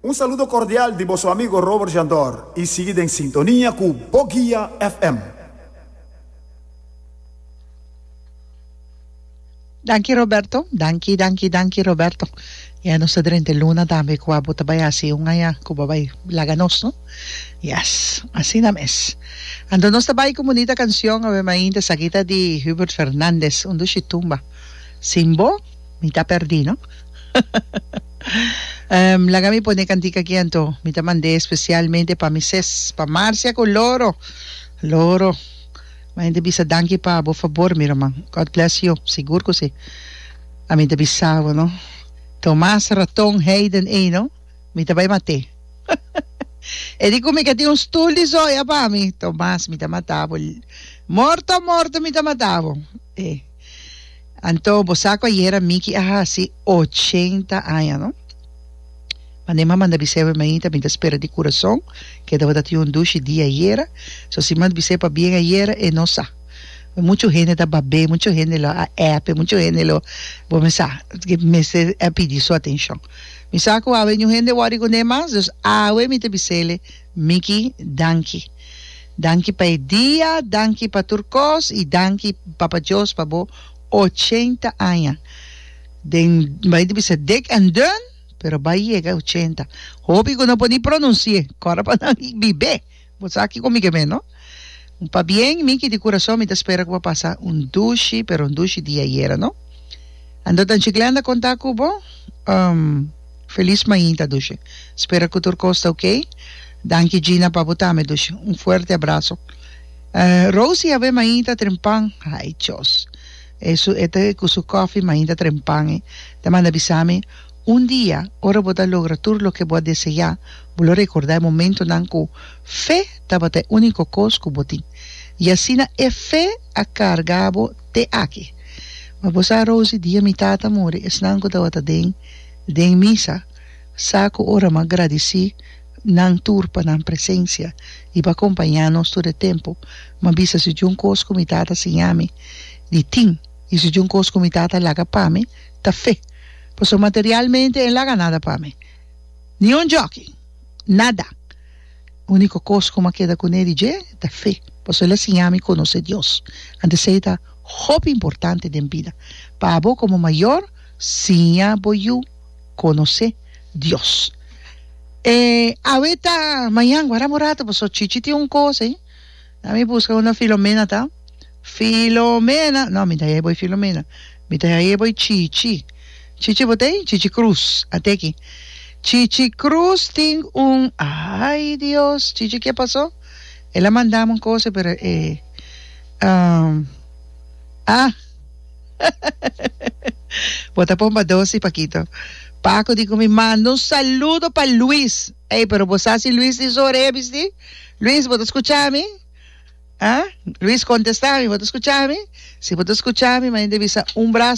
Un saludo cordial di boso amigo Robert Jandor y sigui den sintonia cu Bo Guia FM. Danki Roberto, danki, danki, danki Roberto. Ya nos ta drenta e luna tambe cua bo ta bay haci un aña cu bo a bay laga nos, no? Yes, asina mes. Anto nos ta bay cu bunita cancion, awe mainta, esaki ta di Hubert Fernandez, Un dushi tumba sin bo. Mi ta perdí no. Em, laga mi pone cantica aquí anto. Mi ta mandé especialmente pa mi ses, pa Marcia cu Loro. Loro. Mi hende bisa danki pa bo favor, mi ruman. God bless you. Sigur cu si. A mi ta bisa bo no. Tomas, Raton, Hayden ey no. Mi ta bay maté. E di cu mi ca tin un stoel di zoya pa mi. Tomas, mi ta mata bo. Morto, morto mi ta mata bo. Ey. Anto bo sa kua yera Mickey a hasi ochenta aña no? Mande mama manda bis'é pa mi ta mi ta spera di kurason ke tabata tin un dushi di ayera, so si mand bis'é pa bien ayera e no sa. Muchu hende ta bab'é, muchu hende lo a ep, muchu hende lo bo mi sa ke mester a pidi su atenshon. Mi sa ku awe ñuhende wòri kund'é mas, dus awe mi ta bis'ele, Micky, Danki. Danki pa e dia, danki pa tur kos i danki Papa Djos pa bo ochenta aña. Den, N bai di bisa dik en dun, pero bai yega ochenta. Hopi ku no por ni pronunsié kòrda pa nan bibé. Bo sa kiko mi ke mei, no? Pabien, mi ki di kurason mi ta spera ku bo pasa un dushi, pero un dushi di ayera, no? Anto ta Anchiklean ta konta ku bo? Um Felis mainta, dushi. Spera ku tur kos ta okey. Danki, Gina, pa bo tambe, dushi. Un fuerte abraso. Uh Rosie a be mainta trempan. Ay, chos. E su e ta ku su kòfi, mainta trempan e ta manda bisa mi. Un dia, ora bo ta logra tur loke bo a deseá, bo lo rekordá e momentunan ku fe tabata e úniko kos ku bo tin, i asina e fe a karga bo te aki. Mi bo sa Rosie dia mi tata muri, esnan ku tabata den den misa sa ku ora mi a gradisí nan tur pa nan presensia i pa kompañá nos tur e tempu. Mi a bisa si djun kos ku mi tata siña mi di tin i si djun kos ku mi tata laga pa mi ta fe. Pasobra materialmente el laga nada pa mi. Ni un jòki. Nada. Úniko kos ku mi a keda kuné di dje ta fe, pasobra el a siña mi konosé Dios. Anto esei ta hopi importante den bida. Pa abo komo mayor, siña bo yu konosé Dios. E awe ta mañan, guardá bo ratu, pasobra chichi tin un kos ei. Na mi buska unda Filomena ta. Filomena! No, mi ta hei bo ei Filomena. Mi ta hei bo ei Chichi. Chichi bo ta ei? Chichi Cruz. A te aki. Chichi Cruz tin un. Ay Dios! Chichi ke pasó? El a mandami un cosa pero e. Um, ah! Bo ta pon pa dosi, Pakito. Paco di cu mi, Manda un saludo pa Luis. Ey, pero bo sa si Luis tin su orea bistí? Luis, bo ta scucha mi? Haa? Luis contesta, Mi bo ta scucha mi? Si bo ta scucha mi, manda e bisa un braz.